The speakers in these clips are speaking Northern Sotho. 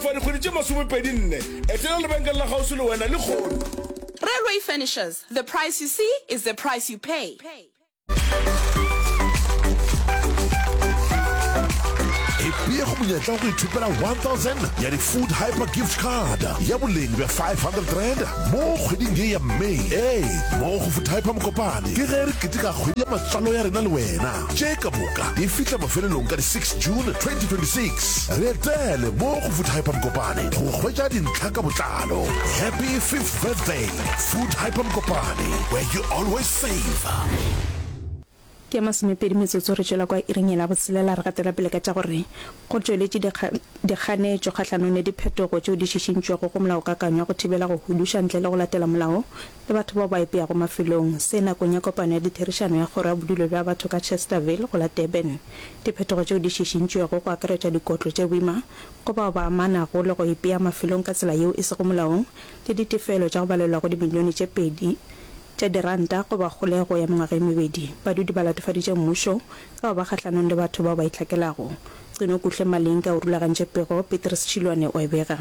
For dikgwedi tše masomepedi nne, etela lebenkele la kgauswi le wena lehono. Railway Furnishers, the price you see is the price you pay. Ipeye go monyetla wa go ithopela 1000 ya di-food hyper gift card ya boleng bja 500 rand mo kgweding ye ya may ee mo go food hyper mokopane ke ge re keteka kgwedi ya matswalo ya rena le wena tše ka moka di fihla mafelelong ka di 6 June 2026. Re etele mo go Food Hyper Mokopane go hwetša dintlha ka botlalo. Happy fifth birthday Food Hyper Mokopane where you always save. Ke ya masomepedi metsotso re tšwela kwa iring yela botshelela re gatela pele ka tša gore go tšweletše dikganetšo kgahlanong le diphetogo tšeo di šišintšwego go molaokakanywa go thibela go huduša ntle le go latela molao le batho bao ba ipeago mafelong, se nakong ya kopano ya ditherišano ya Kgoro ya Bodulo bja Batho ka Chesterville go la Durban. Diphetogo tšeo di šišintšwego go akaretša dikotlo tše boima go bao ba amanago le go ipea mafelong ka tsela yeo e sego molaong le ditefelo tša go balelwa go dimilione tše pedi tša diranta go ba kgolego ya mengwaga e mebedi. Badudi ba latofaditše mmušo ka go ba kgahlanong le batho bao ba itlhakelago. Cino Kuhle Malinga o rulagantše pego, Petrus Chilwane o e bega.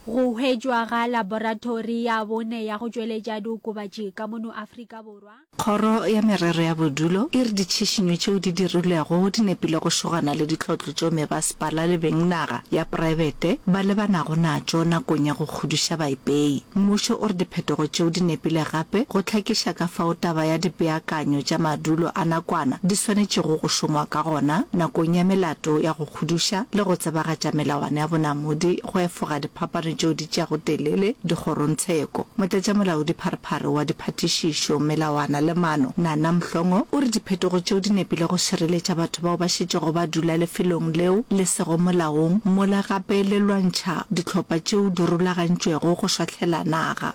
Go hwetšwa ga laboratori ya bone ya go tšweletša diokobatši ka mono Afrika Borwa. Kgoro ya Merero ya Bodulo e re ditšhišinyo tšeo di dirilwego di nepile go šogana le ditlotlo tšeo mebasepala le beng naga ya praebete ba lebanago natšo nakong ya go kgodiša baipei. Mmušo o re diphetogo tšeo di nepile gape go hlakiša ka fao taba ya dipeakanyo tša madulo a nakwana di swanetšego go šongwa ka gona nakong ya melato ya go kgodiša le go tsebagatša melawana ya bonamodi go efoga diphapano tšeo di tšeago telele dikgorontsheko. Motlatšamolaodipharephare wa Diphathišišo, Melawana le Maano, Nana Mhlongo, o re diphetogo tšeo di nepile go šireletša batho bao ba šetšego ba dula lefelong leo le sego molaong mola gape le lwantšha dihlopha tšeo di rulagantšwego go šwahlela naga.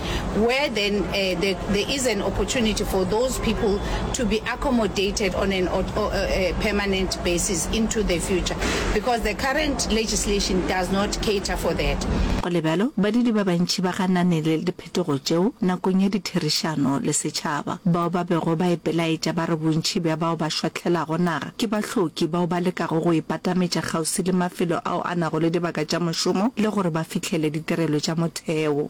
where then uh, the, there is an opportunity for those people to be accommodated on an uh, uh, permanent basis into the future because the current legislation does not cater for that. go le bjalo badidi ba bantši ba ganane le diphetogo tšeo nakong ya ditherišano le setšhaba bao ba bego ba ipelaetša ba re bontši bja bao ba šwahlelago naga ke bahloki bao ba lekago go ipatametša kgauswi le mafelo ao a nago le dibaka tša mošomo le gore ba fihlele ditirelo tša motheo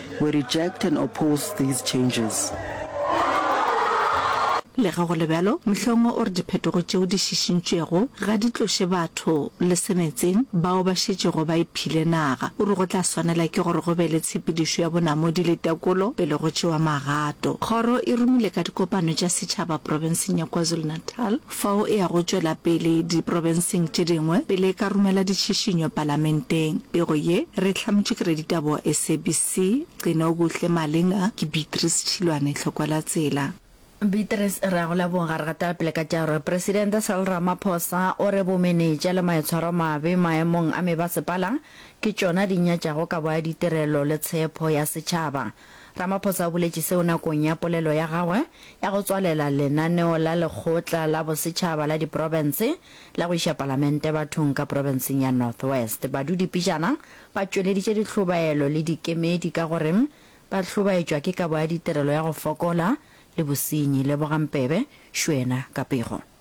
We reject and oppose these changes. Lega go le bjalo, Mhlongo o re diphetogo tšeo di šišintšwego ga di tloše batho le semetseng bao ba šetšego ba iphile naga. O re go tla swanela ke gore go be le tshepedišo ya bonamodi le tekolo pele go tšewa magato. Kgoro e romile ka dikopano tša setšhaba profenseng ya KwaZulu-Natal, Fao e ya go tšwela pele diprobenseng tše dingwe pele e ka romela ditšhišinyo palamenteng. Pego ye re e hlametšwe ke raditaba wa SABC, Gcinokuhle Malinga, ke Beatrice Tšhilwane Tlhokwalatsela. Beatrice, re a go leboga. Re gatela pele ka tša gore Presidente Cyril Ramaphosa o re bomenetša le maitshwaromabe maemong a mebasepala ke tšona di nyatšago kabo ya ditirelo le tshepho ya setšhaba. Ramaphosa o boletše seo nakong ya polelo ya gagwe ya go tswalela lenaneo la Lekgotla la Bosetšhaba la Diprofense la go iša Palamente bathong ka profenseng ya North West. Badudipejana ba tšweleditše dihlobaelo le dikemedi ka go re ba hlobaetšwa ke kabo ya ditirelo ya go fokola le bosenyi. Lebogang Pebe, Shwena, Kapego.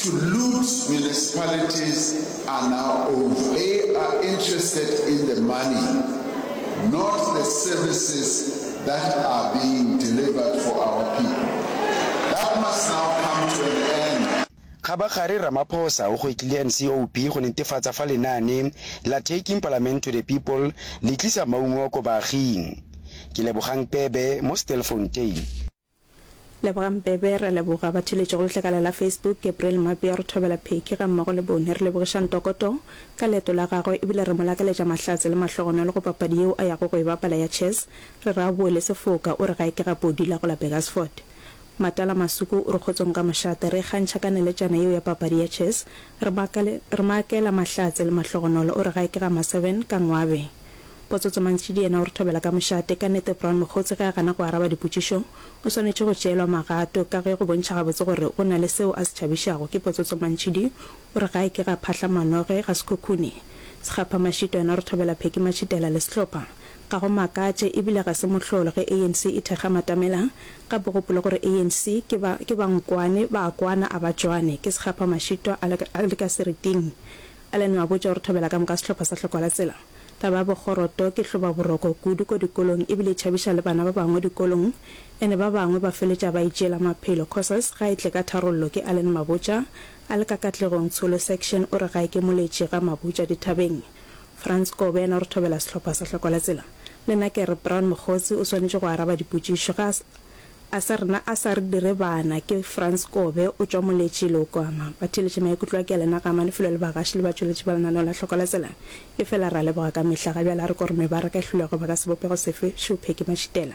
To loot municipalities are now over. They are interested in the money, not the services that are being delivered for our people. That must now come to an end. Kgabagare, Ramaphosa o gwetlile NCOP go netefatsa fa lenaane la Taking Palament to the People le tlisa maungo ko baaging. Ke Lebogang Pebe mo Stilfontein. Lebogang Bebe, re leboga ba theletše go letlakala la Facebook, Gabriel Mabia, re thobela Pheki ga mmogo le Bone, re lebogiša Ntokoto ka leeto la gagwe ebile re mo lakaletša mahlatse le mahlogonolo go papadi yeo a yago go e bapala ya chess, re re a boe le sefoka, o re gae ke ga Podi la go la Burgersfort. Matala Masuku o re kgotsong ka mošate, re ikgantšha ka neletšana yeo ya papadi ya chess, re mo akela mahlatse le mahlogonolo, o re gae ke ga Maseven ka Ngwabe. Potso tse mantši di yena o re thobela ka mošate. Ka nete Brown mokgotse ge a gana go araba dipotšišo o swanetše go tšeelwa magato ka ge go bontšha gabotse gore o na le seo a se tšhabišago ke potso tse mantši di o re ga e ke ga phahla manoge ga sekhukhune Sekgapha Mashito yena o re thobela Pheki Matšhitela le sehlopha Ga go makatše e bile ga se mohlolo ge ANC e thekga matamela gape gopole gore ANC ke ba ke ba nkwane ba a kwana a ba tšwane ke Sekgapha Mashito a le ka seriting Alan o a botša gore thobela ka moka sehlopha sa hlokwa la tsela. Taba ya bokgoroto ke hlobaboroko kudu ko dikolong e bile e tšhabiša le bana ba bangwe dikolong ene ba bangwe ba feletša ba itšeela maphelo causes ga e tle ka tharollo ke Alan Mabotja a le ka Katlegong Tsholo section o re ga e ke moletši ga Mabotja dithabeng. Frans Kobe yena o re thobela sehlopha sa hlokwa la tsela. Le nna ke re Brown Mokgotsi o swanetše go araba dipotšišo ga A sa rena a sa re dire bana ke Frans Kobe o tšwa Moletši Leokoma. Ba theeletše maikutlo a Kealena ga ama lefelo le bagaši le batšweletši ba lenaneo la Hloko la Tsela. Efela re a leboga ka mehla. Ga bjale a re ko re mebaraka e hlwilego baka sebopego sefe, šupheki, mašitela.